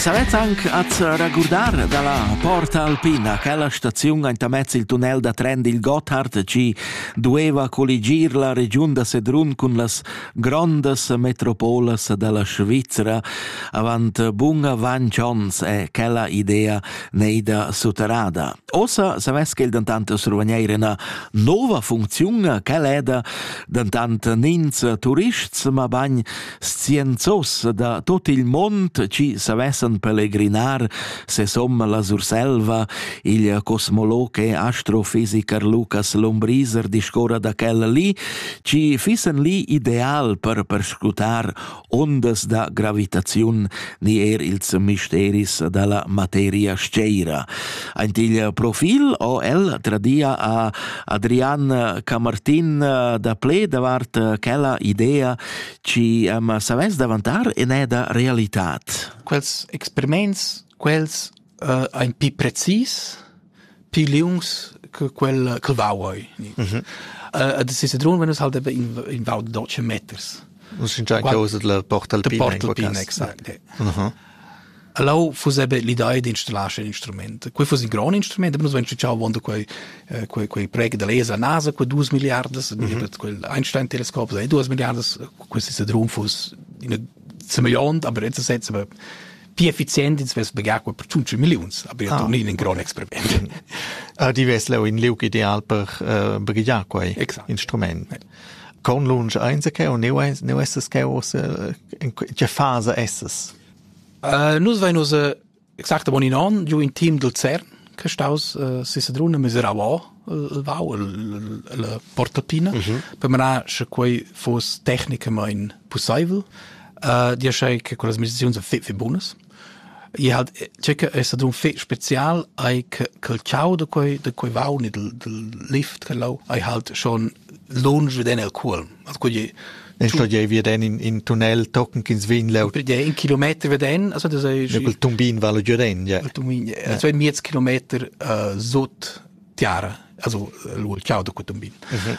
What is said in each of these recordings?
Savez anc az regurdar dalla Porta Alpina, quella staziun aintamez il tunnel da tren dil Gotthard chi dueva colligir la regiun da Sedrun cun las grondas metropolas dalla Svizra avant bun avant ons è quella idea neida sutterrada. Ossa savess quel dentant survegnir ina nova funcziun, quella è da dentant nins turists, ma bagn scienzos da tut il mond chi savessan pelegrinar sesomme la Surselva, il cosmologe astrofisiker Lucas Lombriser discorra da quella li, ci fissen li ideal per perscutar ondas da gravitaziun ni er ils misteris dalla materia sceira. Ant il profil o el tradia a Adrian Camartin da ple davart quella idea Ci am savais davantar eneda realitat? Quels experiments, quels uh, ein pi precis, pi liungs che quel che vauoi. Mm -hmm. uh, das ist run, wenn es halt in, in Vau de Deutsche Meters. Un sincer causa de la portalpina. De portalpina, exact. Yeah. Uh -huh. Leu fuss era l'idea d'installar sc'in instrument. Quei fuss in grond instrument, aber nus vein schigiau avon da quei eh, quei quei preg da laser NASA quei duas milliardas, mm -hmm. quel Einstein Teleskop, e duas milliardas, questi sedrum fuss in semegliont, aber jetzt setzen wir più efficienti ins vess pagar quei per 5 millions, aber ja ah. torni in grond experiment. Ah, di vess leu in liug ideal per uh, eh, brigliar quei Exakt. instrument. Ja. Conlunsch ainsa cheu? Neu, neu essas cheu ussa? Tge fasa essas? Uh, nus vein ussa exact bon in onn giu in team dil CERN che staus uh, si Sedrun a Miserauà il vau la portatina mm -hmm. per manar sche quei fos tecnicamain possibel uh, dir che con las meditazions fitfi bunas I ha tgei che ei stadun fetg special ei che quel tgau da quei da quei vaun e dal dal lift che lau ei halt schon lunsch veden el cuolm. Also quei ei Ne sto jei veden in, in tunnel tochen ch'ins vegn leu. Per in kilometer veden, also das ei Ja, quel tumbin vala giuren, ja. il tumbin, ja. so ein miez kilometer uh, sut tiara, also uh, il tgau da quei tumbin. Mhm.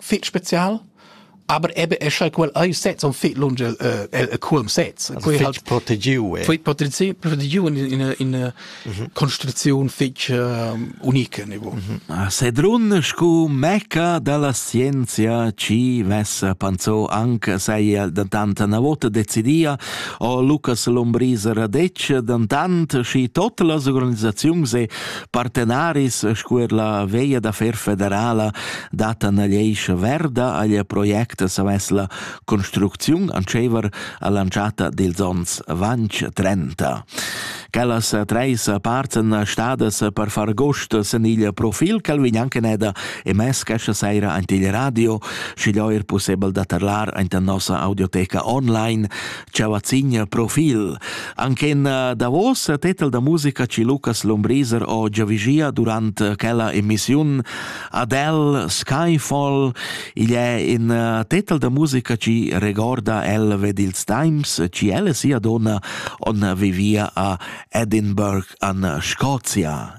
fich special aber eben es ja quel ei sets un fit lunge äh, äh, culm sets quei halt protegiu eh. fit protegiu protegiu in in in construzion fich unique niveau ah, sedrun scu meca della scienzia ci vessa panzo anche sei dantant na vota decidia o Lucas Lombriser radec dantant schi tot las organisaziun se partenaris sco er la veia d'affair federala data nagliescha verda aglia project savess la construcziun antschever all'anchata dils ons vanch 30. Quellas treis parts en stadas per far gost sen il profil cal vignankeneda e mes cascia saira ant il radio, schi er possibel da tarlar ant nossa audioteca online Ciavazigna Profil. Anchen eh, davos tetel da musica ci Lucas Lombriser o giavigia durant quella emissiun Adele Skyfall. Igl è in eh, tetel da musica ci regorda el ved ils times ci elle sia donna on vivia a Edinburgh an Scozia.